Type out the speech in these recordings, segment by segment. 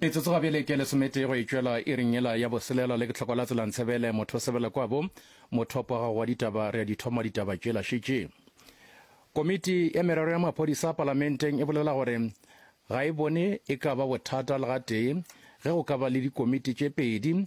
metsotso ga bjele ke lesometee go e tšwela e reng ela ya boselela le ke tlhoko la tselang tshebele motho sebele kwabo mothopo wa gago wa ditaba re a dithoma ditaba tšela šetše komiti ya merero ya maphodisa palamenteng e bolela gore ga e bone e ka ba bothata le gatee ge go ka ba le dikomiti tše pedi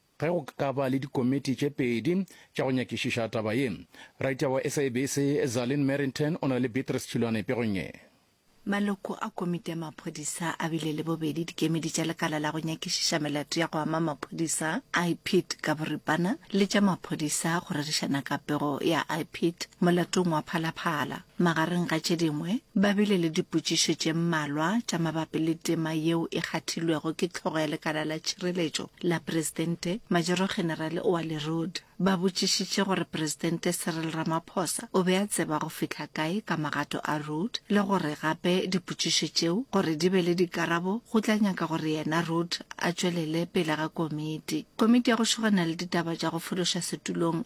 Ge go ka ba le dikomiti tše pedi tša go nyakišiša taba ye. Raitya wa SABC, Zalin Merrington o na le Beatrice Chilwane pegong ye. Maloko a komiti ya maphodisa a bile le bobedi dikemedi tša lekala la go nyakišiša melato ya go ama maphodisa, IPID ka boripana, le tša maphodisa go rerišana ka pego ya IPID molatong wa Phala Phala. Magareng ga tše dingwe, ba bile le dipotšišo tše mmalwa tša mabapi le tema yeo e kgathilwego ke Hlogo ya Lekala la Tšhireletšo la Presidente, Majoro-Generale Oa Lerud. Ba botšišitše gore Presidente Cyril Ramaphosa o be a tseba go fihla kae ka magato a Rudd le gore gape dipotšišo tšeo gore di be le dikarabo go tla nyaka gore yena Rudd a tšwelele pele ga komiti. Komiti ya go šogana le ditaba tša go fološa setulong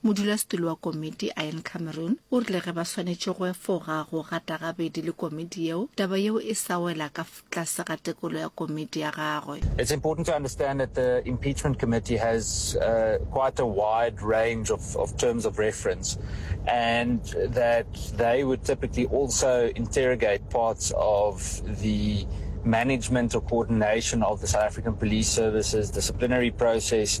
Modulasetulo wa komiti, Ian Cameron, o rile ge ba swanetše go efoga go gata gabedi le komiti yeo, taba yeo e sa wela ka tlase ga tekolo ya komiti ya gagwe. It's important to understand that the Impeachment Committee has uh, quite a wide range of, of terms of reference and that they would typically also interrogate parts of the management or coordination of the South African Police Services disciplinary process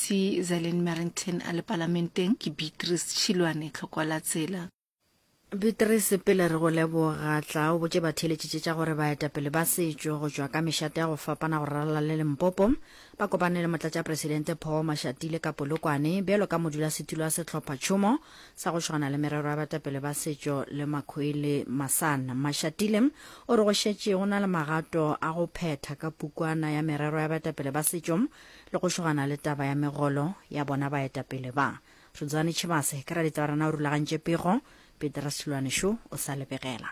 Mosebetsi Zylene Merrington a le Palamenteng ke Beatrice Tšhilwane Tlhokwalatsela. Beatrice, pele re go leboga, tla o botše batheeletši tše tša gore baetapele ba setšo go tšwa ka mešate ya go fapana go ralala le Limpopo ba kopane le Motlatšapresidente Paul Mashatile ka Polokwane bjalo ka modulasetulo wa sehlophatšhomo sa go tšhwana le merero ya baetapele ba setšo le Makhwele Masan. Mashatile o re go šetše go na le magato a go phetha ka pukwana ya merero ya baetapele ba setšo Le go šogana le taba ya megolo ya bona baetapele ba. Rudzwani Tshibase ke raditabarana o rulagantše pego, Petera Silwane Shu o sa lebegela.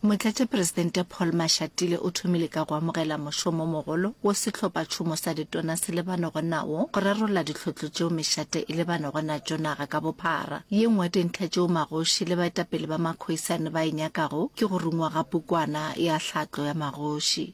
Motlatšaperesidente Paul Mashatile o thomile ka go amogela mošomomogolo wo Sehlophatšhomo sa Ditona se lebanego nawo go rarolla dihlotlo tšeo mešate e lebanego natšo naga ka bophara. Ye nngwe ya dintlha tšeo magoši le baetapele ba makhoisane ba e nyakago ke go rungwa ga pukwana ya Tlhatlo ya Magoši.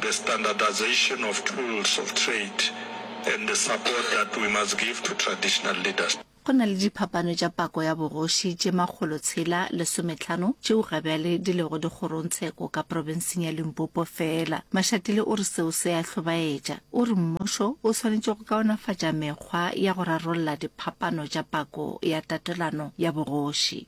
the standardisation of tools of trade and the support that we must give to traditional leaders. Go na le diphapano tša pako ya bogoši tše makgolo tshela lesometlhano tšeo gabjale di lego dikgorongtsheko ka profenseng ya Limpopo feela. Mashatile o re seo se a hlobaetša. O re mmušo o swanetše go kaonafatša mekgwa ya go rarolla diphapano tša pako ya tatelano ya bogoši.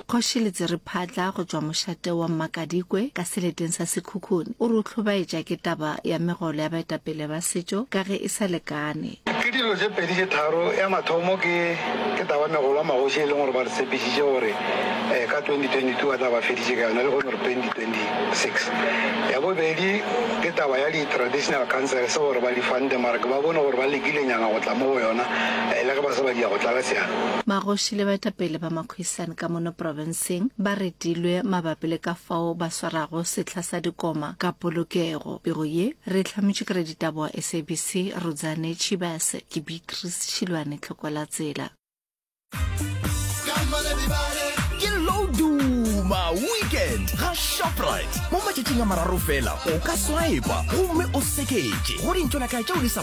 Kgoši Letsiriphatla go tšwa mošate wa Mmakadikwe ka seleteng sa Sekhukhune o re o hlobaetša ke taba ya megolo ya baetapele ba setšo ka ge e sa lekane. Ke dilo tše pedi tše tharo, ya mathomo ke ke taba ya megolo ya magoši e leng gore ba re tshepišitše gore ka 2022 ba tla ba feditše ka yona lehono re 2026. Ya bobedi ke taba ya di traditional councils gore ba di funde mara ke ba bone gore ba lekilenyana go tla mo go yona le ge ba se ba diya go tlala seatla. Magoši le baetapele ba Quissan ka mono profenseng ba retilwe mabapi le ka fao ba swarago sehla sa dikoma ka polokego. Pego ye re e hlametšwe ke raditaba wa SABC Rudzane Tshibase. Ke Beatrice Šilwane Tlhokwelatsela. ke low duma weekend ga shoprite mo matšatšing a mararo fela o ka swipa gomme o seketše go dintšo la kae tšeo di sa